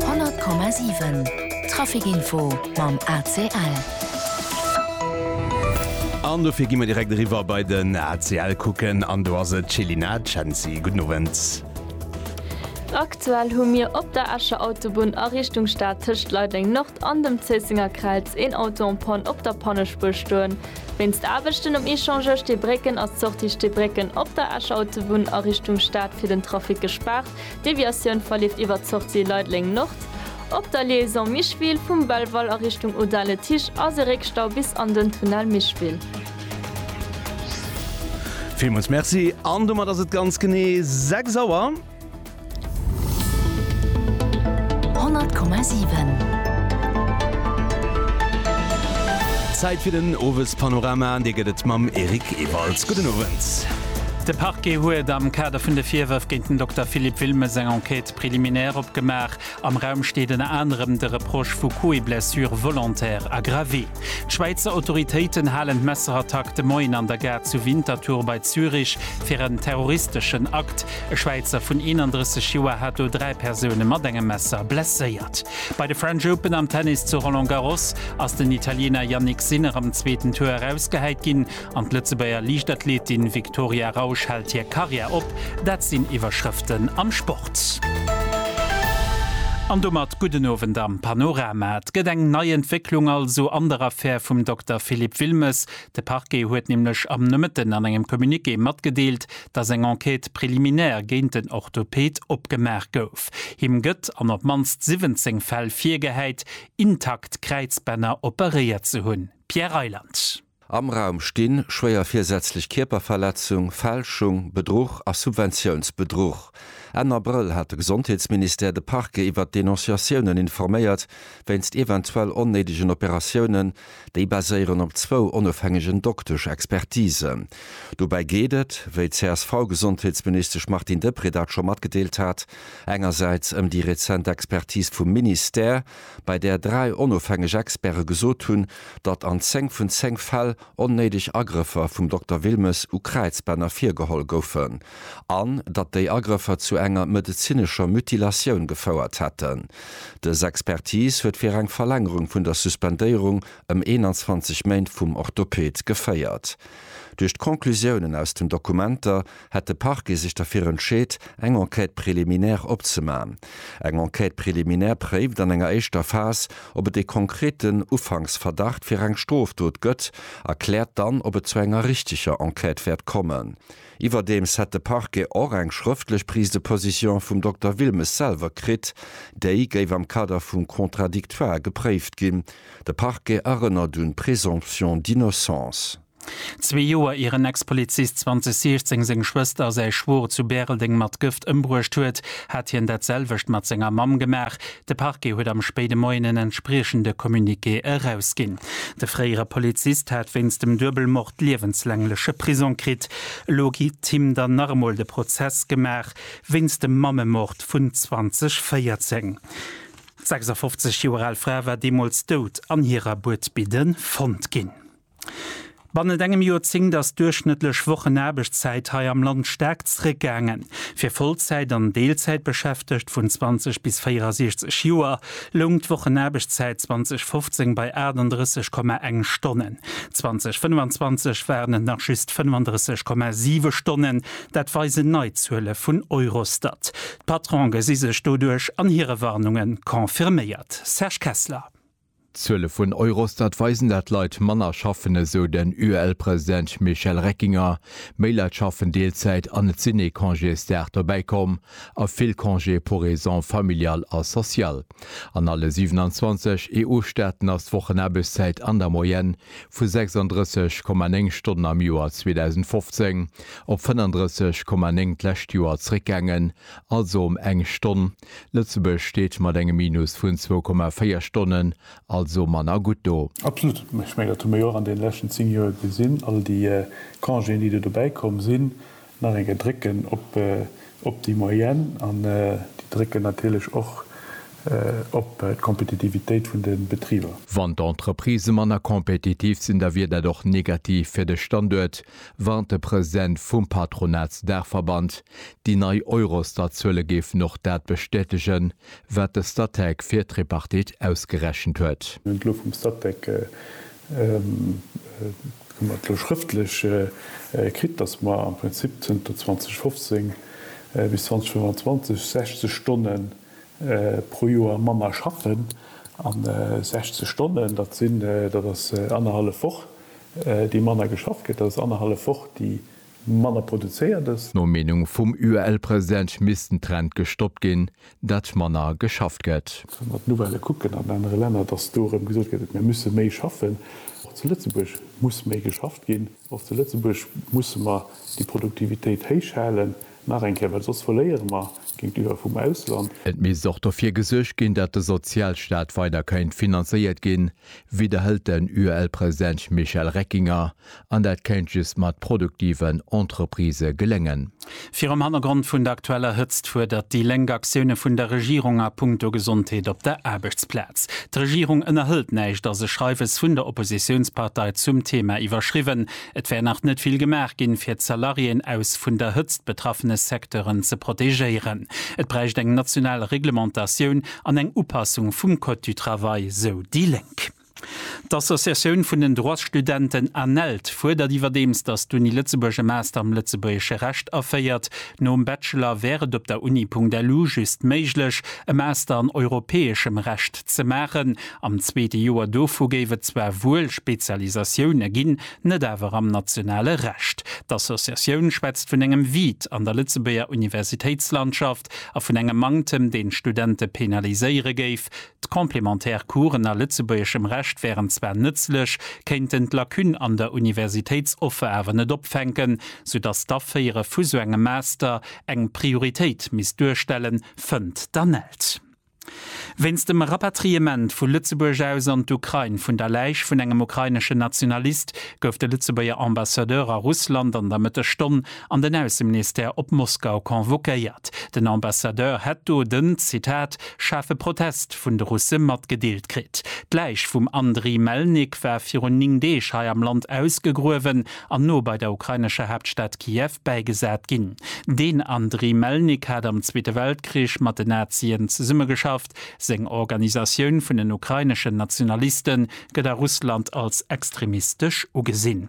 100,7 Traficinfo mam ACL. An dofir gi mer direkt eriwwer bei den ACL kucken an do ass et Céline Cenci. Gudden Owend. Aktuell hu mir op der Escher Autobunn a Richtung Stad tëscht Leideleng Nord an dem Zéissenger Kräiz een Auto en Panne op der Pannespuer stoen. Wéinst Aarbechten um Échangeur Steebrécken ass d'Sortie Steebrécken op der Escher Autobunn a Richtung Stad fir den Trafic gespaart. D'Deviatioun verleeft iwwer d'Sortie Leideleng-Nord op der Liaison Micheville. Vum Belval a Richtung Audun-le-Tiche ass e Réckstau bis an den Tunnel Micheville. Villmools Merci an domat ass et ganz genee 6 Auer. 100,7. Zäit fir den Owespanorama an dee gëtt et mam Eric Ewalds. Gudden Owend. De Parquet huet am Kader vun de Virwërf géint den Dokter Philippe Wilmes eng Enquête préliminaire opgemaach. Am Raum steet ënner anerem de Reproche vu Coups et blessures volontaires aggravés. D'Schwäizer Autoritéiten halen d'Messerattack de Moien an der Gare zu Winterthur bei Zürich fir en terroristeschen Akt. E Schwäizer vun 31 Joer hat do dräi Persoune mat engem Messer blesséiert. Bei de French Open am Tennis zu Roland Garros ass den Italiener Jannik Sinner am zweeten Tour erausgehäit ginn. An d'Lëtzebuerger Liichtathletin Viktoria Rausch hält hir Karriär op. Dat sinn Iwwerschrëften am Sport. An domat gudden Owend am Panorama. Et gëtt eng nei Entwécklung also an der Affär vum Dokter Philippe Wilmes. De Parquet huet nämlech am Nomëtten an engem Communiqué matgedeelt, datt eng Enquête préliminaire géint den Orthoped opgemaach gouf. Him gëtt an op d'mannst 17 Fäll virgehäit, intakt Kräizbänner operéiert ze hunn. Pierre Reyland. Am Raum stinn, schwéier virsätzlech Kierperverletzung, Fälschung, Bedruch a Subventiounsbedruch. Enn Abrëll hat de Gesondheetsministère de Parquet iwwert d'Denonciatiounen informéiert, wéinst eventuell onnéidegen Operatiounen. Déi baséieren op zwou onofhängegen Doktesch-Expertisen. Dobäi geet et, wéi d'CSV-Gesondheetsministesch Martine Deprez dat scho matgedeelt hat, engersäits ëm déi rezent Expertis vum Ministère, bei där dräi onofhängeg Experte gesot hunn, datt an zéng vun zéng Fäll onnéideg Agrëffer vum Dokter Wilmes u Kräizbänner virgeholl goufen an datt déi Agrëffer zu enger medezinescher Mutilatioun gefouert hätten. Dës Expertis huet fir eng Verlängerung vun der Suspendéierung ëm 21 Méint vum Orthoped geféiert. Duerch d'Conclusiounen aus den Dokumenter hätt de Parquet sech derfir entscheet, eng Enquête préliminaire opzemachen. Eng Enquête préliminaire préift an enger éischter Phas, ob et ee konkreten Ufanksverdacht fir eng Strofdot gëtt a kläert dann, ob et zu enger richteger Enquête wäert kommen. Iwwerdeems hätt de Parquet och eng schrëftlech Prise de position vum Dokter Wilmes selwer kritt. Déi géif am Kader vum Contradictoire gepréift ginn. De Parquet erënnert un d'Présomption d'innocence. Zwee Joer ier en Ex-Polizist 2016 seng Schwëster a säi Schwoer zu Bäreldeng mat Gëft ëmbruecht huet, hat hien dat selwecht mat senger Mamm gemaach. De Parquet huet am spéide Moien en entspriechende Communiqué erausginn. De fréiere Polizist hat wéinst dem Duebelmord liewenslängleche Prisong kritt. Elo geet him dann nach emol de Prozess gemaach wéinst dem Mammemord vun 2014. D'sechsafofzeg Joer al Fra war deemools dout an hirer Buedbidde fonnt ginn. Bannent engem Joerzéngt ass d'duerchschnëttlech Wochenaarbechtszäit hei am Land staark zréckgaangen. Fir Vollzäit an Deelzäitbeschäftegt vun 20 bis 64 Joer loung d'Wochenaarbechtszäit 2015 bei 38,1 Stonnen. 2025 waren et nach just 35,7 Stonnen, dat weisen nei Zuele vun Eurostat. D'Patrone gesi sech doduerch an hire Warnunge confirméiert. Serge Kessler. D'Zuele vun Eurostat weisen dat Leit manner schaffen, esou den UEL-President Michel Reckinger. Méi Leit schaffen Deelzäit an et sinn ee Congésdag dobäi komm a vill Congés pour raisons familiales a sociales. An alle 27 EU-Staaten ass d'Wochenaarbechtszäit an der Moyenne vu 36,9 Stonnen am Joer 2015 op 35,9 d'lescht Joer zeréckgaangen, also ëm eng Stonn. Lëtzebuerg steet mat engem Minus vun 2,4 Stonnen also manner gutt do. Absolut. Ech mengen, dat hu mir jo och an deene leschten 10 Joer gesinn, all déi Congéen, déi do dobäi komm sinn, nach eng Kéier drécken op déi Moyenne an déi drécken natierlech och op d'Kompetitivitéit vun de Betriber. Wann d'Entreprisë manner kompetitiv sinn, da wier dat och negativ fir de Standuert, Warnt de President vum Patronatsdaachverband. Déi nei Eurostat-Zuele géifen och dat bestätegen, wat de Statec fir d'Tripartite ausgerechent huet. D'Lo vum Statec hu mer d'lo schrëftlech kritt, datt mer am Prinzip zënter 2015 bis 2025 60 Stonne pro Joer manner schaffen. A 60 Stonnen, dat sinn, dat ass annerhallef Woch. déi manner geschafft gëtt, dass et annerhallef Woch, déi manner produzéiert ass. No Meenung vum UEL-President misst den Trend gestoppt ginn, datt manner geschafft gëtt. Wa mer d'Nouvellë kucken an anere Länner, dass do erëm gesot gëtt, mir musse méi schaffen. Och zu Lëtzebuerg muss méi geschafft ginn. Och zu Lëtzebuerg musse mer déi Produktivitéit héichhalen. Nach eng Kéier, well soss verléiere mer géintiwwer vum Ausland. Et misst och dofir gesuergt ginn, datt de Sozialstaat weider kéint finanzéiert ginn, widderhëlt den UEL-President Michel Reckinger. An dat kéint just mat produktiven Entreprisë geléngen. Virum Hannergrond vun der aktueller Hëtzt fuerdert déi Lénk Aktioune vun der Regierung a Punkto Gesondheet op der Aarbechtsplaz. D'Regierung ënnerhëlt näischt a se Schreiwes vun der Oppositiounspartei zum Theema iwwerschriwwen. Et wär nach net vill gemaach ginn, fir d'Salariéen aus vun der Hëtzt betraffene Secteuren ze protegéieren. Et bräicht eng national Reglementatioun an eng Upassung vum Code du Travail, sou déi Lénk. D'Associatioun vun den Droitsstudenten ANELD fuerdert iwwerdeems, datt d'Uni Lëtzebuerg e Master am lëtzebuergesche Recht aféiert. Nom Bachelor wär et op der Uni-punkt-lu just méiglech, e Master an europäeschem Recht ze maachen, Am zweete Joer dovu géif et zwar wuel Spezialisatioune ginn, net awer am nationale Recht. D'Associatioun schwätzt vun engem Vide an der Lëtzebuerger Universitéitslandschaft a vun engem Manktem, deen d'Studente penaliséiere géif. D'complémentaire Coursen a lëtzebuergeschem Recht wären zwar nëtzlech, kéinten d'Lacune an der Universitéitsoffer awer net opfänken, soudass d'Aféiere vu sou engem Master eng Prioritéit misst duerstellen, fënnt d'Anne Elst. Wéinst dem Rapatriement vu Lëtzebuerg aus an d'Ukrain vun der Läich vun engem ukraineschen Nationalist gouf de Lëtzebuerger Ambassadeur a Russland an der Mëttesstonn an den Ausseministère op Moskau convoquéiert. Den Ambassadeur hätt do den, Zitat, schaarfe Protest vun de Russe matgedeelt kritt. D'Läich vum Andriy Melnik war virun 9 Deeg hei am Land ausgegruewen an no bei der ukrainescher Haaptstad Kiew bäigesat ginn. Den Andriy Melnik hat am Zweete Weltkrich mat den Nazien zesummegeschafft. Seng Organisatioun vun den ukraineschen Nationaliste gëtt a Russland als extremistesch ugesinn.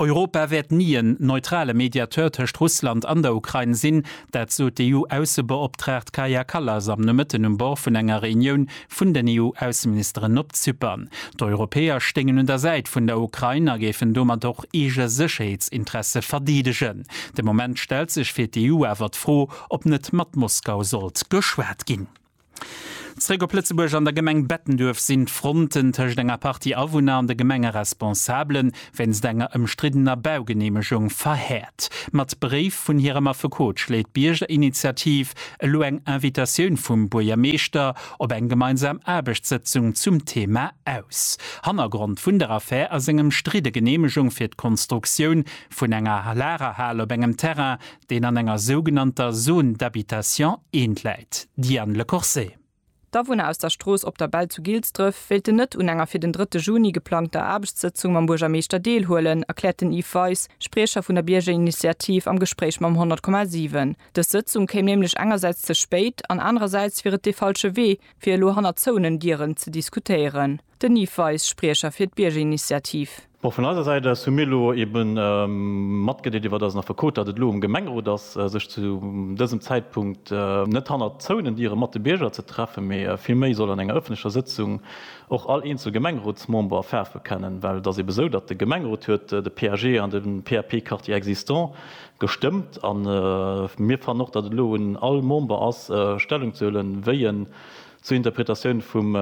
Europa wäert ni en neutrale Mediateur tëscht Russland an der Ukrain sinn, dat sot d'EU-Aussebeoptraagt Kaja Kallas am Nomëtten um Bord vun enger Reunioun vun den EU-Ausseministeren op Zypern. D'Europäer stéingen un der Säit vun der Ukrain a géifen domat och eege Sécherheetsinteresse verdeedegen. De Moment stellt sech fir d'EU awer d'Fro, ob net mat Moskau sollt geschwat ginn. Zréck op Lëtzebuerg, An der Gemeng Bettenduerf sinn d'Fronten tëscht enger Partie Awunner an de Gemengeresponsabele wéinst enger ëmstriddener Baugeneemegung verhäert. Mat Bréif vun hirem Affekot schléit d'Biergerinitiativ elo eng Invitatioun vum Buergermeeschter op eng gemeinsam Aarbechtssëtzung zum Thema aus. Hannergrond vun der Affär ass eng ëmstridde Geneemegung fir d'Konstruktioun vun enger Lagerhal op engem Terrain, deen an enger sougenannter Zone d'habitation I läit. Diane Lecourcet. D'Awunner aus der Strooss Op der Bell zu Gilsdref wéilten net un enger fir den drëtte Juni geplangter Aarbechtssëtzung mam Buergermeeschter deelhuelen, erkläert den Yves Weis, Spriecher vun der Biergerinitiativ am Gespréich mam 100,7. Dës Sëtzung kéim nämlech engersäits ze spéit an anerersäits wier et dee falsche Wee, fir elo hannert zouenen Dieren ze diskutéieren. Den Yves Weis, Spriecher fir d'Biergerinitiativ. Bon, vun eiser Säit aus hu mir elo ebe matgedeelt, iwwert eisen Affekot, datt et elo um Gemengerot ass, sech zu dësem Zäitpunkt net hannert zouenen Diere mat de Bierger ze treffen, mee villméi soll an enger ëffentlecher Sëtzung och all eenzel Gemengerotsmember Faarf bekennen. Well et ass ebe esou, datt de Gemengerot huet de PAG an de PAP Quartier existant gestëmmt a mir fannen och, datt et elo un all Member ass, Stellung ze huelen, wéi en Zur Interpretatioun vum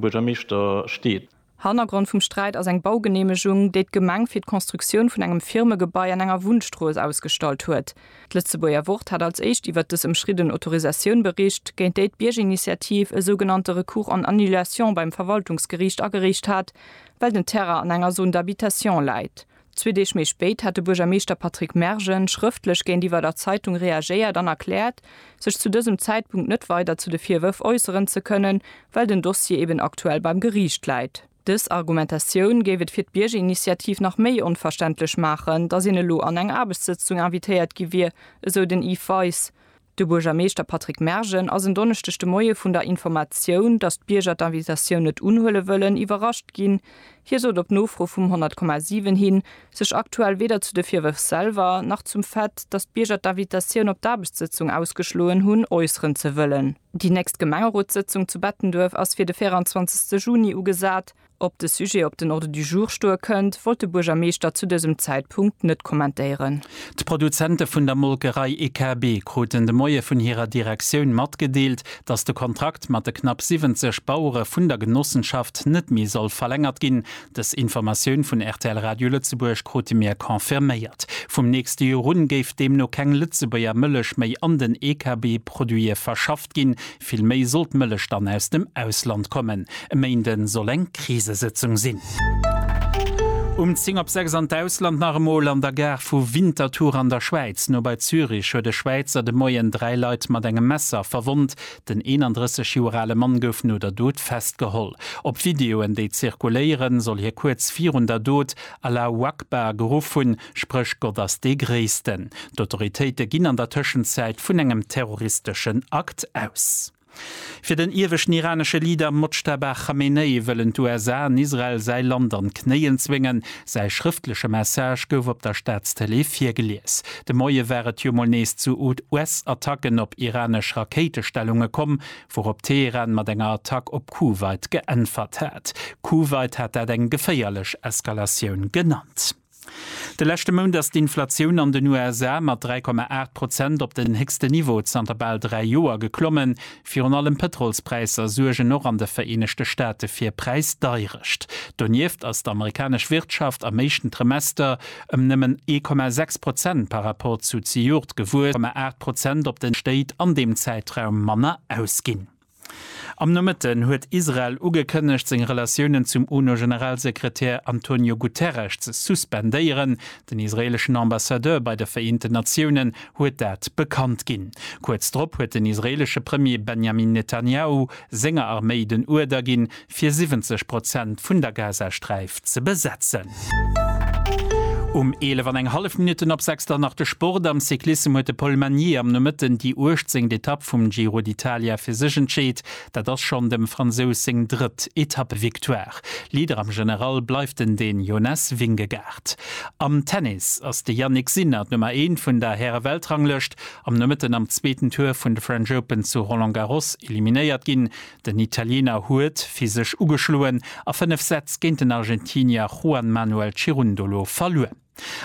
Buergermeeschter steet. Hannergrond vum Sträit ass eng Baugeneemegung, déi d'Gemeng fir d'Konstruktioun vun engem Firmegebai an enger Wunnstrooss ausgestallt huet. D'Lëtzebuerger Wort hat als éischt iwwert dës ëmschridden Autorisatioun bericht, géint déi d'Biergerinitiativ e sougenannte Recours en annulation beim Verwaltungsgeriicht agereecht hat, well den Terrain an enger Zone d'habitation läit. Zwee Deeg méi spéit hat de Buergermeeschter Patrick Mergen schrëftlech géintiwwer der Zeitung reagéiert an erkläert, sech zu dësem Zäitpunkt net weider zu de Virwërf äusseren ze kënnen, well den Dossier eben aktuell beim Geriicht läit. Dës Argumentatioun géif et fir d'Biergerinitiativ nach méi onverständlech maachen, datt een elo an eng Aarbechtssëtzung invitéiert gi wier, esou den Yves Weis. De Buergermeeschter Patrick Mergen ass en Donneschdeg de Moie vun der Informatioun, datt d'Bierger d'Invitatioun net unhuele wëllen, iwwerrascht ginn. Hie sot op Nofro vum 100,7 hin, sech aktuell weder zu de Virwërf selwer, nach zum Fait, datt d'Bierger d'Invitatioun op d'Aarbechtssëtzung ausgeschloen hunn, äusseren ze wëllen. Déi nächst Gemengerotssëtzung zu Bettenduerf ass fir de 24 Juni ugesat. Ob de Sujet op den Ordre du jour stoe kënnt, wollt de Buergermeeschter zu dësem Zäitpunkt net kommentéieren. D'Produzente vun der Molkerei EKB kruten de Moie vun hirer Direktioun matgedeelt, datt de Kontrakt mat de knapp 70 Bauere vun der Genossenschaft net méi soll verlängert ginn. Dës Informatioun vun rtl Radio Lëtzebuerg krute mir confirméiert. Vum nächste Joer un géif deemno keng Lëtzebuerger Mëllech méi an den EKB-Produite verschafft ginn, Vill méi soll d'Mëllech dann aus dem Ausland kommen. E Méinde soll eng Krisesëtzung sinn. Um 10 op 6 an d'Ausland nach emol. An der Gare vu Winterthur an der Schwäiz, no bei Zürich, huet e Schwäizer de Moien dräi Leit mat engem Messer verwonnt. Den 31 Joer ale Mann gouf no der Dot festgeholl. Op Videoen, déi zirkuléieren, soll hie kuerz virun der Dot Allahu Akbar geruff hunn. Spréch Gott ass dee Gréissten. D'Autoritéite ginn an der Tëschenzäit vun engem terroristeschen Akt aus. Fir den ieweschten iranesche Leader Mojtaba Khamenei wëllen d'USA an Israel säi Land an d'Knéien zwéngen. Säi schrëftleche Message gouf op der Staatstëlee virgelies. De Moie war et jo mol nees zu US-Attacken op iranesch Rakéitestellunge komm, wourop Teheran mat enger Attack op Kuwait geäntwert hat. Kuwait hat dat eng geféierlech Eskalatioun genannt. De leschte Mount ass d'Inflatioun an den USA mat 3,8 Prozent op den héchsten Niveau zanter bal dräi Joer geklommen. Virun allem Pëtrolspräisser suergen och an de Vereenegte Staate fir Präisdeierecht. Donieft ass d'amerikanesch Wirtschaft am éischten Trimester ëm nëmmen 1,6 Prozent par rapport zu zejoert gewuess, woumat 1,8 Prozent op den Stéit an deem Zäitraum manner ausginn. Am Nomëtten huet Israel ugekënnegt, seng Relatiounen zum UNO-Generalsekretär Antonio Guterres ze suspendéieren. Den israeeleschen Ambassadeur bei de Vereenten Natiounen huet dat bekannt ginn. Kuerz drop huet den israeelesche Premier Benjamin Netanjahu senger Arméi den Uerder ginn, fir 70 Prozent vun der Gazasträif ze besetzen. Um 11 an eng hallef Minutten op 6 dann nach de Sport. Am Cyclissem huet de Paul Magnier am Nomëtten déi 18. Etapp vum Giro d'Italia fir sech entscheet. Dat ass schonn dem Fransous seng drëtt Etappevictoire. Leader am General bleift en den Jonas Vingegaard. Am Tennis ass de Jannik Sinner d'Nummer eent vun der Häre-Weltranglëscht am Nomëtten am zweeten Tour vun de French Open zu Roland Garros eliminéiert ginn. Den Italiener huet fir sech ugeschloen a 5 Sätz géint den Argentinier Juan Manuel Cirundolo verluer.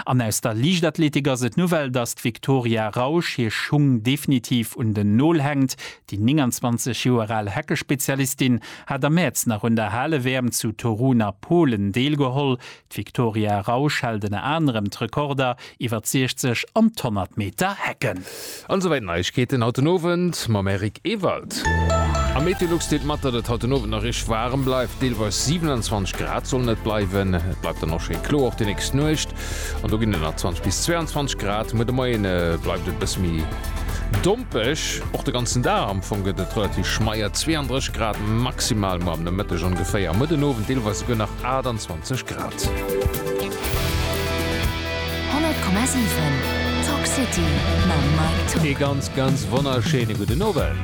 An aus der Liichtathletik ass et d'Nouvelle, dass d'Victoria Rausch hir Schung definitiv un den Nol hänkt. Déi 29 Joer al Heckespezialistin hat am Mäerz nach un der Hale-WM zu Torun a Polen deelgeholl. D'Victoria Rausch hält ënner anerem d'Rekorder iwwer d'Sichzeg an d'Honnert Meter Hecken. An esou weit Neiegkeeten haut den Owend mam Eric Ewald. Am Meteolux deelt mat, datt et haut den Owend nach richteg waarem bleift, deelweis 27 Grad sollen et bleiwen. Et bleift dann och schéi kloer och déi nächst Nuecht an do ginn et nach 20 bis 22 Grad. Muer de Moien bleift et e bësse méi dompeg, och de ganzen Dag am Fong gëtt et relativ schmeier, 32 Grad maximal muer am Nomëtteg ongeféier, muer den Owend deelweis esouguer nach 28. 28 Grad. 100,7 Talk City mam Mike Tock. Ee ganz ganz wonnerschéine gudden Owend.